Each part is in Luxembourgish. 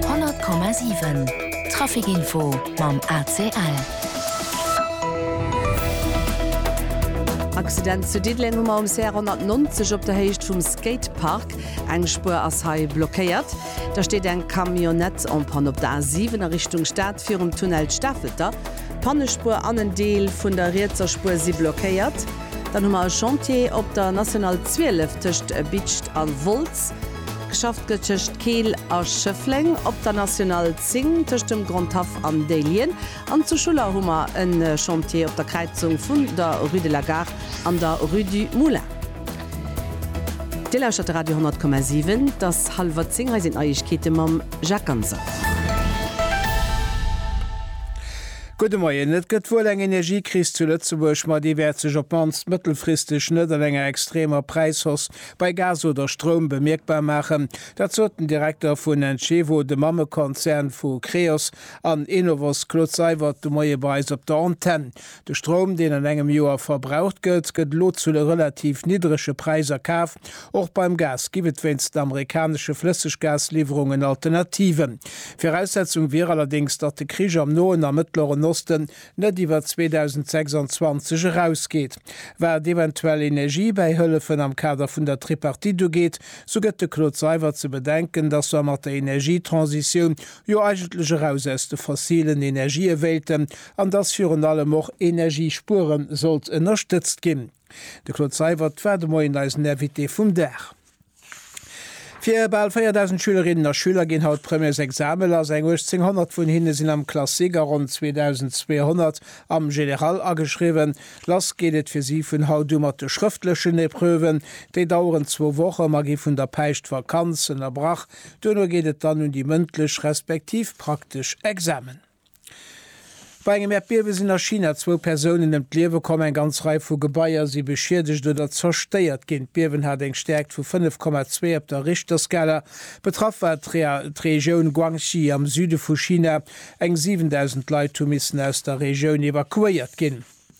100,7 Trafic Info mam ACL. Accident zu Diddeleng um ROMC 190 op der Héicht vum Skatepark. Eng Spuer ass hei blockéiert. Da steet eng Camionnette en panne op der A7 a Richtung Stad virum Tunnel Stafelter. D'Pannespuer an en Deel vun der rietser Spuer si blockéiert. Dann hu mer e Chantier op der National 12 tëscht Bitscht a Wolz. Geschafft gëtt tëscht Keel a Schëffleng, op der National 10 tëscht dem Grand Haff an Déihlien an zu Schuller hu mer e Chantier op der Kräizung vun der Rue de la Gare an der Rue du Moulin. Dir lauschtert de Radio 10,7. Et ass hallwer zéng, hei sinn d'Neiegkeete mam Jacques Ganser. Gudde Moien. Et gëtt wuel eng Energiekris zu Lëtzebuerg, ma déi wäert sech op d'mannst mëttelfristeg net an enger extremer Präishausse Bei Gas oder Stroum bemierkbar maachen, dat sot den Direkter vun Encevo, de Mammekonzern vu Creos an Enovos, Claude Seywert de Moie bei eis op der Antenn. De Stroum, deen an engem Joer verbraucht gëtt, gëtt elo zu relativ niddrege Präiser kaf. Och beim Gas ginn et wéinst den amerikanesche Flësseggasliwwerungen Alternativen. Viraussetzung wier allerdéngs, datt de Krich am Noen a Mëttleren Osten net iwwer 2026 erausgeet. Wat eventuell Energiebäihëllefen am Kader vun der Tripartite ugeet, sou gëtt de Claude Seywert ze bedenken, datt mer mat der Energietransitioun jo eigentlech eraus aus de fossilen Energië wéilten an datt virun allem och Energiespuere sollt ënnerstëtzt ginn. De Claude Seywert war de Moien eisen Invité vum Dag. Fir bal 4.000 Schülerinnen a Schüler ginn haut d'Premièresexame lass. Eng 1.800 vun hinne sinn am Classique a ronn 2.200 am Général ageschriwwen. Lass geet et fir si vun haut u mat de schrëftlechen Epreuven. Déi daueren zwou Woche. Mer gi vun der Päischtvakanz ënnerbrach. Duerno geet et dann un déi mëndlech respektiv praktesch Examen. Bei engem Äerdbiewe sinn a China zwou Persounen ëm d'Liewe komm, eng ganz Rei vu Gebaier si beschiedegt oder zerstéiert ginn. D'Biewen hat eng Stäerkt vu 5,2 op der Richterskala. Betraff war d'Regioun Guangxi am Süde vu China. Eng 7.000 Leit hu missen aus der Regioun evakuéiert ginn.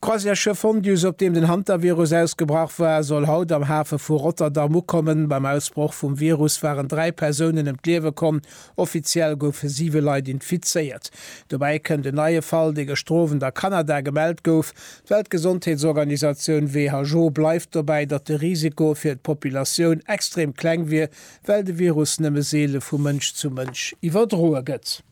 D'Croisièresschëff Fondus, op deem den Hantavirus ausgebrach war, soll haut am Hafe vu Rotterdam ukommen. Beim Ausbroch vum Virus waren dräi Persounen ëm d'Liewe komm. Offiziell goufe siwe Leit infizéiert. Dobäi kënnt en neie Fall, dee gëschter Owend a Kanada gemellt gouf. D'Weltgesondheetsorganisatioun WHO bleift dobäi, datt de Risiko fir d'Populatioun extrem kleng wier, well de Virus nëmme seele vu Mënsch zu Mënsch iwwerdroe gëtt.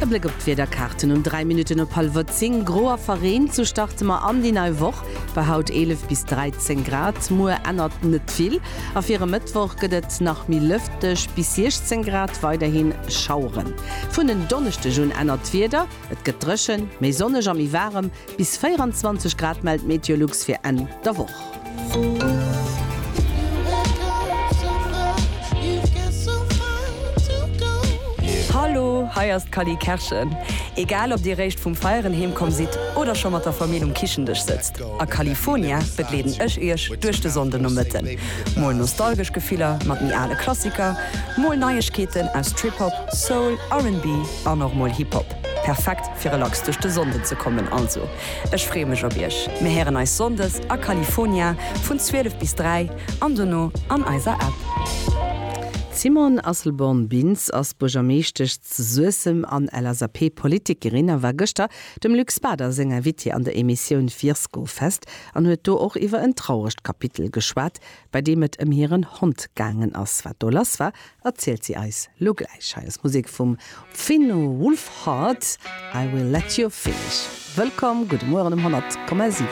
E Bléck op d'Wiederkaarten um 3 Minutten op hallwer 10, Gro a verreent, sou starte mer an déi nei Woch. Bei haut 11 bis 13 Grad. Muer ännert net vill a fir e Mëttwoch gëtt et nach méi lëfteg, bis 16 Grad, weiderhi Schaueren. Vun en Donneschdeg un ännert d'Wieder. Et gëtt dréchen, méi sonneg a méi waarem, bis 24 Grad mellt Meteolux fir Enn der Woch. Hallo, hei ass d'Cally Kerschen. Egal ob dir réischt vum Feieren heem komm sidd oder scho mat der Famill um Kichendësch sëtzt, a California begleeden ech iech duerch de Sonndenomëtten. Mol nostalgesch Gefiller mat méi ale Klassiker, mol Neiegkeeten aus Trip-Hop, Soul, RB, An och mol Hip Hop. Perfekt fir relax duerch de Sonnden ze kommen. Also ech freeë mech op iech. Mir héieren eis Sonndes a Califonia vun 12 bis 3 an dono an eiser App. D'Simone Asselborn-Bintz ass Buergermeeschtesch zu Suessem an LSAP-Politikerin a war gëschter dem Luc Spader seng Invitée an der Emissioun Virskofest an huet do och iwwer en trauregt Kapitel geschwat, bei deem et ëm hiren Hond gaangen ass. Wat do lass war, erzielt si eis lo gläich. Hei ass Musek vum Fino Wolfhard, I will let you finish. Wëllkomm, gudde Mueren um 100,7.